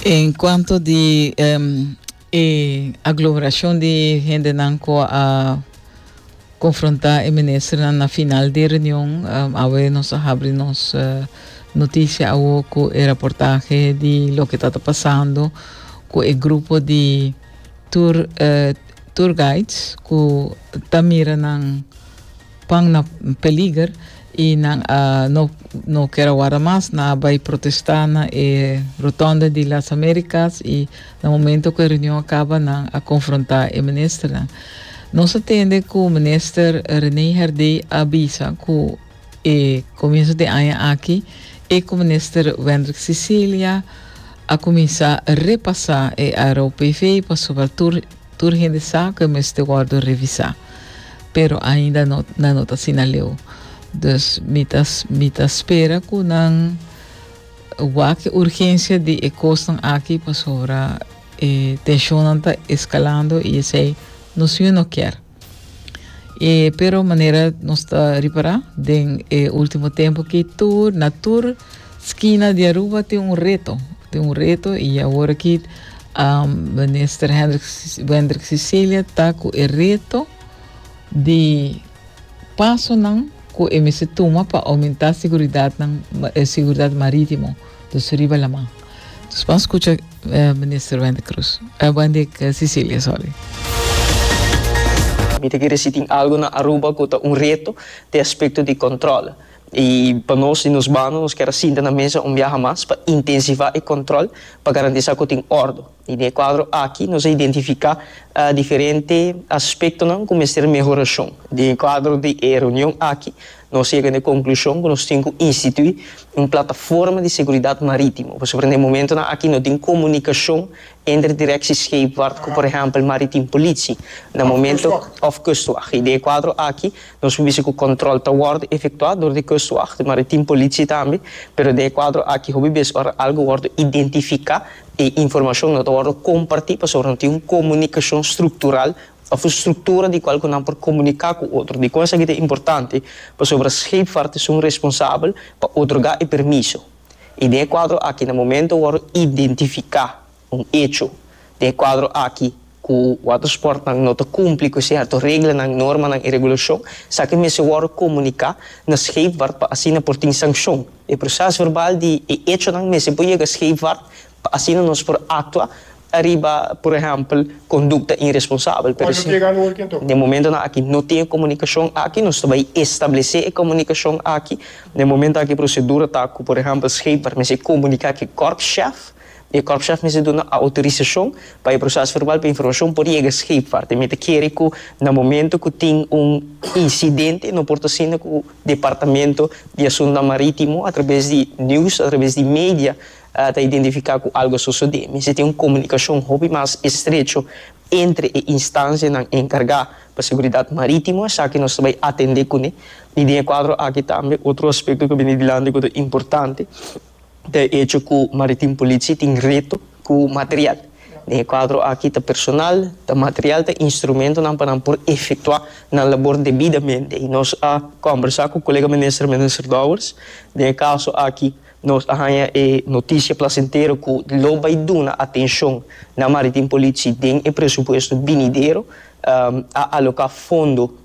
En cuanto di em, e aglomeracion di hendenan cu a confronta e ministernan na final di reunion, em, awe nos a habri nos eh, noticia awo cu e reportaje di loke ta ta pasando cu e grupo di tour, eh, tour guides cu ta mira nan Pan na peliger y nan a no no ker a warda mas, nan a bay protesta na e Rotonde di Las Americas y na momento cu e reunion a caba nan a confronta e ministernan. Nos a tende cu Minister Rene Herdey a bisa cu e comienzo den aña aki e cu Minister Wendrick Cecilia a cuminsa repasa e Aero PV pasobra tur Tur hende sa cu e mester wordo revisa, pero ainda no, nan no ta asina leu. Dus mi ta, mi ta spera cu nan wak e urgencia di e cosnan aki pasobra e tensionnan ta escalando y esey nos siñor no kier. E, pero manera nos ta ripará den e último tempo ki tur, na tur skina di Aruba tin un reto. Tin un reto i awor ki um, minister Hendrik, Wendrik Cecilia ta ku e reto di pasonan ku e mester tuma pa aumentá seguridatnan, eh, seguridad marítimo. Dos riba la man. Dus ban scucha Minister Wendy Cruz. Eh, Wendy Cecilia, sorry. Mi ta kere si tin algo na Aruba ku ta un reto te aspekto di kòntròl. I pa nos di nos bando nos kier a sinta na mesa un biaha mas pa intensivá e kòntròl pa garantisá ku tin òrdu. I den e kuadro aki nos a identifiká diferente aspektonan ku mester mehorashon. Den e kuadro di e reunion aki nos a yega na e konklushon ku nos tin ku instituí un plataforma di seguridat marítimo pasobra na e momentunan aki no tin komunikashon entre direkshi skeepvaart ku por ehèmpel Maritim Politie na momento òf Kustwag. I den e kuadro aki nos por bisa ku kòntròl ta wòrdu efektuá dor di Kustwag, di Maritim Politie tambe, pero den e kuadro aki hopi bes ora algu wòrdu identifiká, E informashon no ta wòrdu kompartí pasobra no tin un komunikashon struktural òf un struktura di kual ku nan por komuniká ku otro. Dikon esaki ta importante? Pasobra Scheepvaart ta esun responsabel pa otorgá e permiso. I den e kuadro akí na momento wòrdu identifiká un echo den e kuadro akí ku watersportnan no ta kumpli ku sierto reglanan, normanan i regulashon, esaki mester wòrdu komuniká na Scheepvaart pa asina por tin sankshon. E prosès verbal di e echonan mester por yega Scheepvaart pa asina nos por aktua ariba, por ehèmpel, kondukta inresponsabel. Pero si den momentonan aki no tin e komunikashon aki, nos ta bai establesé e komunikashon aki. Den momentu aki e prosedura ta ku, por ehèmpel, Scheepvaart mester komuniká ku e kòrpschef. E kòrpschèf mester duna outorisashon pa e prosès verbal pa informashon por yega scheepvaart. Te mi ta kere ku na momentu ku tin un insidente no por ta sinda ku Departamento di Asuntunan Marítimo atrabes di news, atrabes di media ta identifiká ku algu a sosodé. Mester tin un komunikashon hopi mas estrecho entre e instansianan enkargá pa seguridat marítimo. Esaki nos ta bai atendé kuné. I den e kuadro aki tambe otro aspekto ku a bini dilanti ku ta importante. ta hecho cu Maritim Politie tin reto cu material. Den e cuadro aki ta personal, ta material, ta instrumentonan pa nan por efectua nan labor debidamente. Y nos a combersa cu colega minister, Minister Dowers. Den e caso aki nos a haya e noticia placentero cu lo bay duna atencion na Maritim Politie den e presupuesto binidero. A aloca fondo.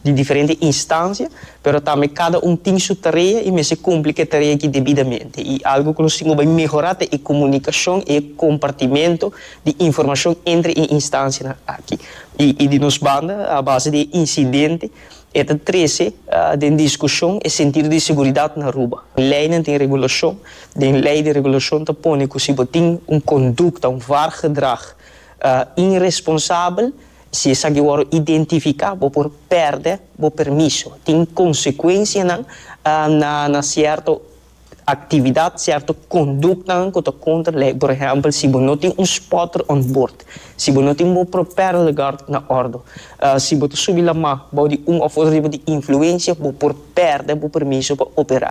di diferente instancia, pero tambe cada un tin su tarea y mester cumpli cu e tarea aki debidamente. Y algo cu nos tin cu bay mehora ta e comunicacion y e compartimento di informacion entre e instancianan aki. Y di nos banda, a base di e incidente, e ta trece den discusion e sentido di seguridad na Aruba. Leynan tin regulacion, den ley di regulacion ta pone cu si bo tin un conducta, un wargedrag, irresponsabel, Si esaki wòrdu identifiká, bo por pèrdè bo permiso. Tin konsekuensianan na sierto aktividat, sierto konduktanan ku ta kontra lei. Por ehèmpel, si bo no tin un spotter on board, si bo no tin bo propèl guard na òrdu, si bo ta subi lamá bou di un òf otro tipo di influensia, bo por pèrdè bo permiso pa operá.